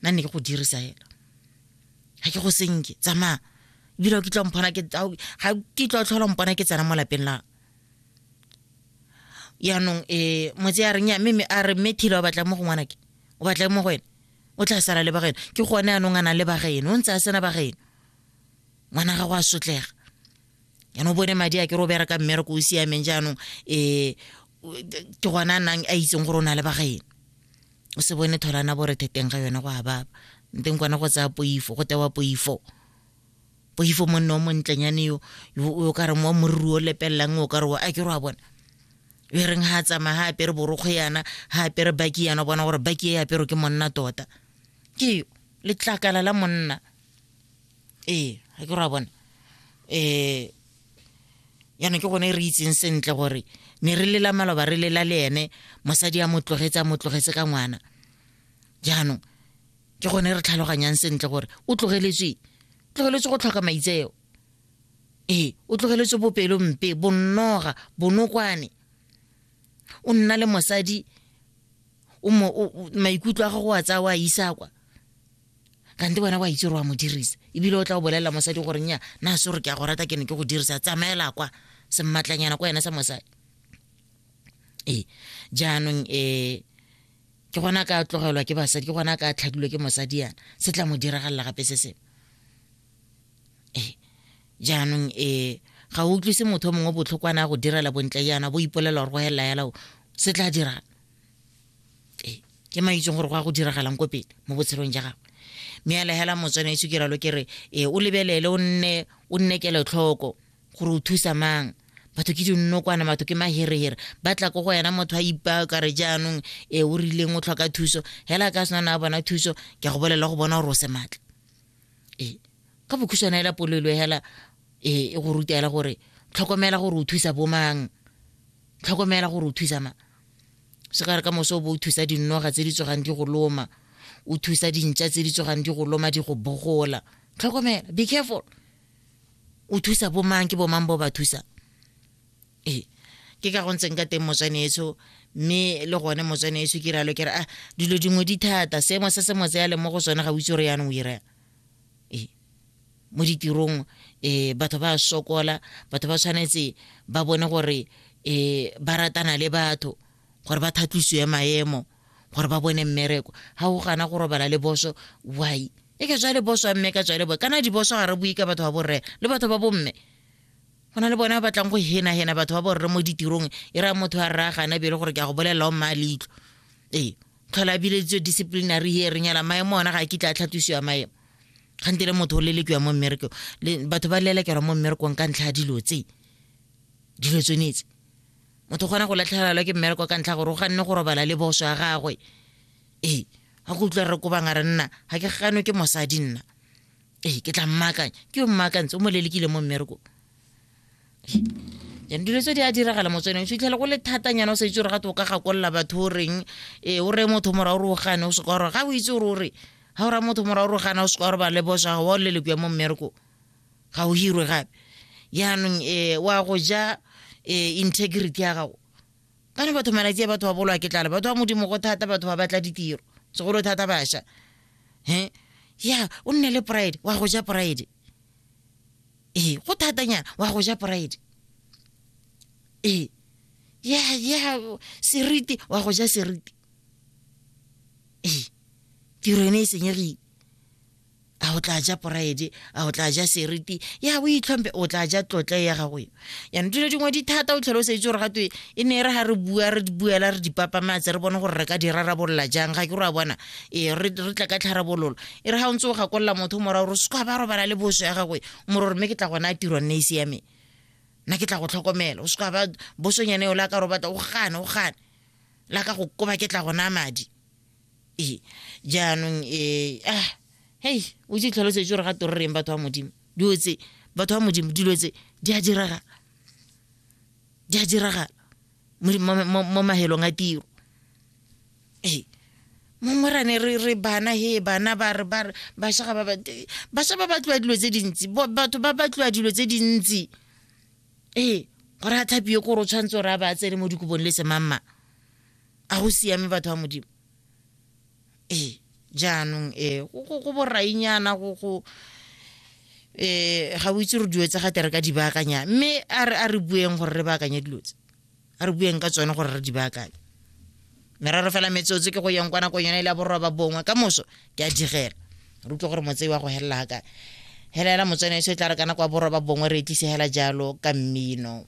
nna ne ke go dirisa hela ga ke go senke tsamaya ebile o kitla mpona ke ga kitla o tlhola mpona ke tsena mo lapeng la yaanong um motse ya reng ya mme a re mme thile o batla mo go ngwana ke o batla mo go ene o tla sala le bageno ke gone anong a nang le bageno o ntse a sena bageno ngwana gago a sotlega yaanong bone madi a ke re o bereka mmereko o siameng jaanong um ke gone a nang a itseng gore o na le bageno o se bone tholana borethe teng ga yone go a baba nteng kwana go tsaya poifo go tewa poifo poifo monne o montlenyane yo o ka reng wa moriri o lepelelang o ka re a ke re wa bona e reng ga a tsamaya ga apere borokgo yana ga apere baki yana bona gore baki e apero ke monna tota ke letlakala la monna ee ga ke re wa bona um yana ke gone re itseng sentle gore ne re lela maloba re lela le ene mosadi a mo tlogetse a mo tlogetse ka ngwana jaanong ke gone re tlhaloganyang sentle gore o tlogeletswe tlogeletswe go tlhoka maitseo ee o tlogeletswe bopelo mpe bonnoga bonokwane o nna le mosadi maikutlo a gago a tsaya o a isa kwa kante wena wa itse gore wa mo dirisa ebile o tla o bolelela mosadi gore nya na se gore ke a go rata ke ne ke go dirisa tsamaela kwa semmatlanyana kwa ena sa mosadi ee jaanong um ke gona ka tlogelwa ke basadi ke gona ka tlhadilwe ke mosadi yana se tla mo diragalela gape se sengwe ee jaanong um ga o utlwise motho o mongwe botlhokwana a go direla bontle yana bo ipolela gore go helela yala se tla dirang ee ke ma itseng gore go ya go diragalang ko pele mo botshelong ja gagwe mme a legela motswana itse ke ralo ke re ee o lebelele o nne o nne kelotlhoko gore o thusa mang batho ke dinokwane batho ke maherehere ba tla ko go yena motho a ipaa ka re jaanong ee o rileng o tlhoka thuso hela ka sena na bona thuso ke a go bolela go bona gore o se maatla ee ka bokhuswana ela polelo hela ee e go ruta hela gore tlhokomela gore o thusa bomang tlhokomela gore o thusa mang se ka re ka moso o bo o thusa dinoga tse di tsogang di go loma o thusa dintša tse di tsogang di go loma di go bogola tlhokomela be careful o thusa bomang ke bomang bo ba thusa ee ke ka go ntseng ka teng motswane etsho mme le gone motswane etsho ke ralo ke re a ah, dilo dingwe di thata seemo se se motse ya leng mo go sone ga o itse gore yanong o iraya e mo ditirong um batho ba sokola batho ba tshwanetse ba bone gore um ba ratana le batho gore ba thatlisiwe maemo gore ba bone mmereko ga o gana go robala le boso why e ka tswa le boso a mme ka tswa le bo kana diboso ga re bue ka batho ba borre le batho ba bomme go na le bona ba batlang go henahena batho ba borre mo ditirong e raya motho a raya gana bele gore ke a go bolelela o mmaa leitlho ee tlhola a bileditswe disciplinary hearing ela maemo ona ga a kitla a tlhatwisiwa maemo gante le motho o lelekiwa mo mmerekong batho ba lelekelwa mo mmerekong ka ntlha ya dilo tse dilo tsonetse motho kgona go latlhegelelwa ke mmereko ka ntlha gore o ganne go robala le boso ya gagwe ee ga go utlwa re kobanga re nna ga ke ganwe ke mosadi nna ee ke tla mmaakanya ke yo mmaakantse o mo lelekile mo mmerekong and dilo tse di a diragala mo tsone o fitlhele go le thatanyana o sa itse gore ga te o ka gakolola batho o reng e o reye motho mora o re o gane o seka gore ga o itse gore o re ga o raya motho mora o re o gana o seka gore ba le bosa ga wa o lele kuya mo mmereko ga o hirwe gape jaanong um wa go ja um integrity ya gago kana batho malatsi a batho ba bolwa ke tlala batho ba modimo go thata batho ba batla ditiro segolo thata bašwa um ya o nne le pride wa go ja pride ee go thatanyana wa go ja pride ee ya ya seriti wa go ja seriti ee tiro ene e senyegile a o tla ja poraede a o tla ja seriti ya o itlhompe o tla ja tlotla ya gago yo yana dilo dingwe di thata o tlhole o sa itse gore gatwe e ne e re ga re bua re buela re dipapama tse re bone gore re ka di rarabolola jang ga ke re a bona ee re tla ka tlharabololo e re ga o ntse o gakolola motho mora gore se ba robala le boso ya gagwe moro gore mme ke tla gona a tirwa nne e siame nna ke tla go tlhokomela o se ka ba bosonyane o la ka robata o gane o gane la ka go koba ke tla gona madi ee jaanong ee ah hei o tse tlhalosetse gore ga to re reng batho ba modimo dilo tse batho ba modimo dilo tse di a diragala di a diragala mo mahelong a tiro ee mongwe rane re re bana he bana ba re ba basha ga ba basha ba batliwa dilo tse dintsi batho ba batliwa dilo tse dintsi ee gore a thapie kore o tshwanetse gore a ba tsene mo dikobong le semamma a go siame batho ba modimo ee jaanong um go borainyana go um ga o itse re dilo tsa gate re ka di baakanya mme a re bueng gore re baakanye dilo tse a re bueng ka tsone gore re di baakanye merero fela metsotso ke go yeng kwa nakong yone e le borwa bongwe ka moso ke a digela re utlwe gore motsei wa go helela ga kae helela motswana e se tla re kana kwa borwa bongwe re e tlisegela jalo ka mmino